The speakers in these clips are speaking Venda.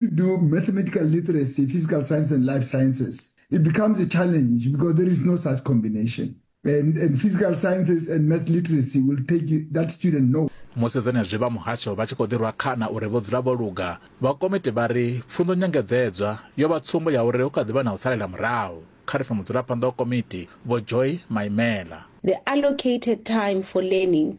you do mathematical literacy, physical science, and life sciences, it becomes a challenge because there is no such combination. And, and physical sciences and math literacy will take you, that student no. musi zwenezwi vha muhasho vha tshi khou ḓirwa khana uri vho dzula vho luga vha komiti vha ri pfunzo nyengedzedzwa yo vha tsumbo ya uri hu kha ḓi vha na u salela murahu kha ri fa mudzulaphanḓa wa komiti vho joy maimela They allocated time for learning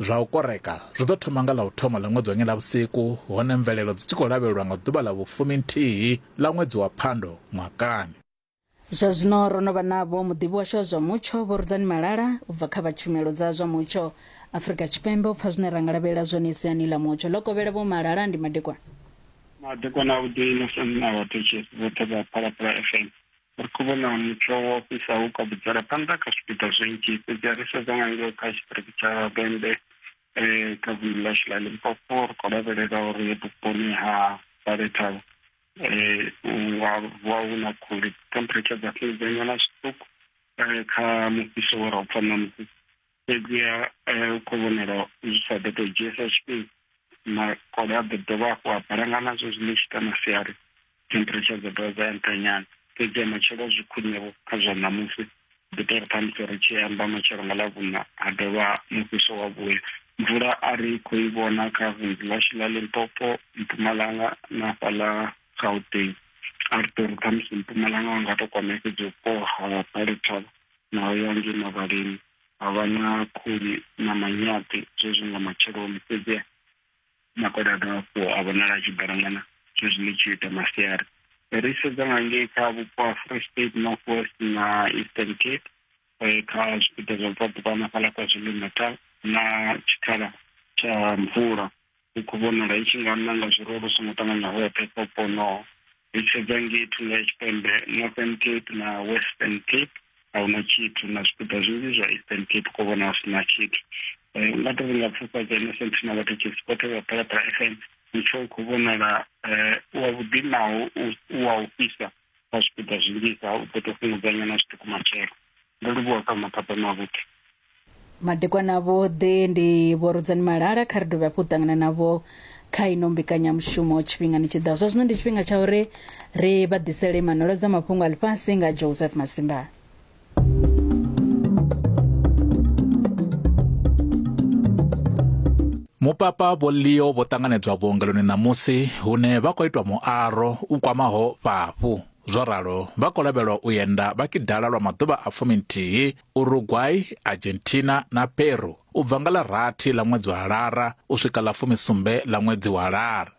Zwa u koreka zwi ḓo thoma nga ḽa u thoma ḽa ṅwedzi wa Nyendavhusiku hone mvelelo dzi tshi khou lavhelelwa nga ḓuvha ḽa vhufumi nthihi ḽa ṅwedzi wa Phando ṅwakani. Zwa zwino ro no vha navho muḓivhi washu wa zwa mutsho Vho Rudzani Malala u bva kha vha tshumelo dza zwa mutsho Afrika Tshipembe u pfa zwine ra nga lavhelela zwone siani ḽa mutsho. Ḽo kovhela Vho Malala, ndi madekwana. Madekwana a vhuḓi na sani na vhathetshelesi vhoṱhe vha Phalaphala FM. ri khou vhona mutsho wo fhisaho u kabudzela phanḓa kha zwipiḓa zwinzhi fhedzi a ri sedza nga ngeo kha tshiṱiriki tsha vhembe um kha vundu ḽashu ḽa limpopo ri khou lavhelela uri vhuponi ha balethavho um nga vuwa hu na khuli temperature dza fhungudzanywa na zwiṱuku um kha mufhiso wo ra u pfa ṋamusi fhedziha u khou vhonala zwi sa ḓo tou dzhiesa tshifhinga makole a ḓo dovha hafhu a balangana zwezwi ḽi tshi ita masiari temperature dza dovha dza ya nṱha nyana fhedziha matshelo zwi khwiṋevho kha zwa ṋamusi ḓi tou ri khamusi ri tshi amba matshelo nga ḽavhuṋa ha dovha mufhiso wa vhuya mvula a ri khou i vhona kha vunḓu ḽashu ḽa limpopo mpumalanga na fhaḽa gauteng a ri tori khamusi mpumalanga wa nga to kwamea fhedzi vhupo ha palethavha naho ya ngei mavhaleni ha vha na khuli na manyaṱi zwezwi nga matsheloni fhedzi makoda a dovha hafhu a vhonala a tshi balangana zwezwi ḽi tshi ita masiari ri sedza nga ngei kha vhupo ha free state north west na eastern cape eh, kha zwipiḓa zwa bvaḓuvha na fhaḽa kwa zulu natal na tshikhala tsha mvula i khou vhonala i tshi nga nanga zwiruwa lu songo ṱanganya hoṱhe kha vhupo honoho ri sedza ngei thungo ya tshipembe northern cape na western cape a huna tshithu na zwipiḓa zwinzhi zwa eastern cape ko vhona hu sina tshithu eh, nga to ringa pfufha dza innocent na vhathekisi vhoṱhe vha phalaphala fm mutsho u khou vhonala eh, wa vhuḓi naho u wa u fhisa kha zwipiḓa zwinzhisa u ḓo to fhungudzanyana zwiṱuku matshelo ndo livhuwa kha maphapha mavhuḓi madekwana vhoḓe ndi vhorodzani malala kha ri dovhe hafhu u ṱangana navho kha ino mbekanyamushumo tshifhingani tshi ḓaho zwa zwino ndi tshifhinga tsha uri ri vha ḓisele manolo dza mafhungo a ḽifhasi nga joseph masimba mupapa vho leo vho ṱanganedzwa vhuongeloni ṋamusi hune vha khou itwa muaro u kwamaho fhafhu zwo ralo vha khou lavhelwa u yenda vha kidala lwa maḓuvha a fuminthihi uruguay argentina na peru u bva nga ḽa rathi ḽa ṅwedzi wa lara u swika ḽa fumisumbe ḽa ṅwedzi wa lara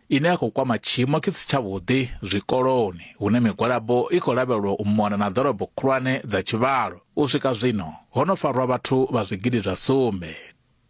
ine ya khou kwama tshiimo tshi si tshavhuḓi zwikoloni hune migwalabo i khou lavhelwa u mona na ḓorobo khulwane dza tshivhalo u swika zwino ho no farwa vhathu vha zwigidi zwa sumbe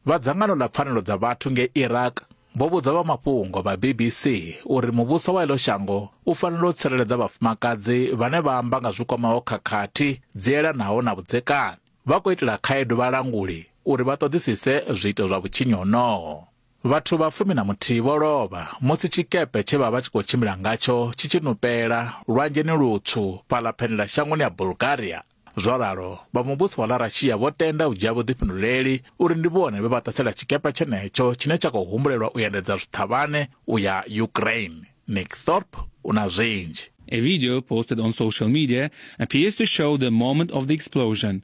vha dzangano ḽa pfanelo dza vhathu nge iraq vho vhudza vha mafhungo vha bbc uri muvhuso wa ilo shango u fanela u tsireledza vhafumakadzi vhane vha amba nga zwi kwamaho khakhathi dzi elanaho na vhudzekani vha khou itela khaedu vhalanguli uri vha ṱoḓisise zwiito zwa vhutshinyi honoho Vhathu vha fumi na muthihi vho lovha musi tshikepe tshe vha vha tshi khou tshimbila ngatsho tshi tshi nupela lwanzheni lutswu fhaḽa phenela shangoni ya Bulgaria. Zwo ralo, vha muvhuso wa ḽa Russia vho tenda u dzhia vhuḓifhinduleli uri ndi vhone vhe vha ṱasela tshikepe tshenetsho tshine tsha khou humbulelwa u endedza zwiṱhavhane u ya Ukraine. Nick Thorpe u na zwinzhi. A video posted on social media appears to show the moment of the explosion.